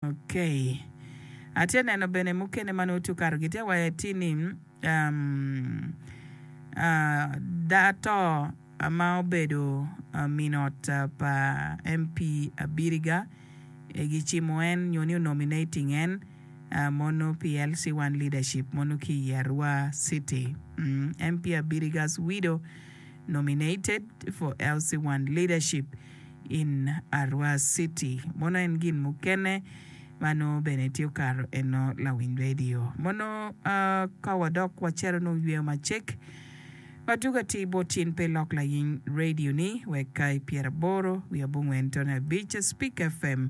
Ok. Atye neno bene mukene ma nongo tye okato gitye wa eti ni da to ma obedo min ot pa MP Abiriga gicimo en nyo ni o nominating en mono pi LC one leadership mono ki i Arua city. MP Abiriga's widow nominated for LC one leadership. in Arua City. Mono en gin mukene ma nongo bene tye okato eno lawiny radio. Mono ka wadok wacero nongo yweyo macek ma dwogo atir bot in pe ilok layiny radio ni wek ka i pyeraboro wiye abongwen tono abic Speak FM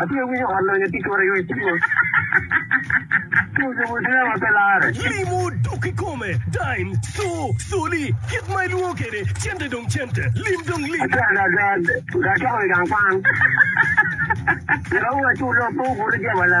Atye winyo ot lonyo tye kore iwi cwiny Tucu mutira ma pe lare. Limo dok kikome, dime, co, coli, kit ma ilwongo kede, cente dong cente, lim dong lim. Atye ada ada, ga acwako i gang kwan. Kirawu acu lok pe obuto jebala.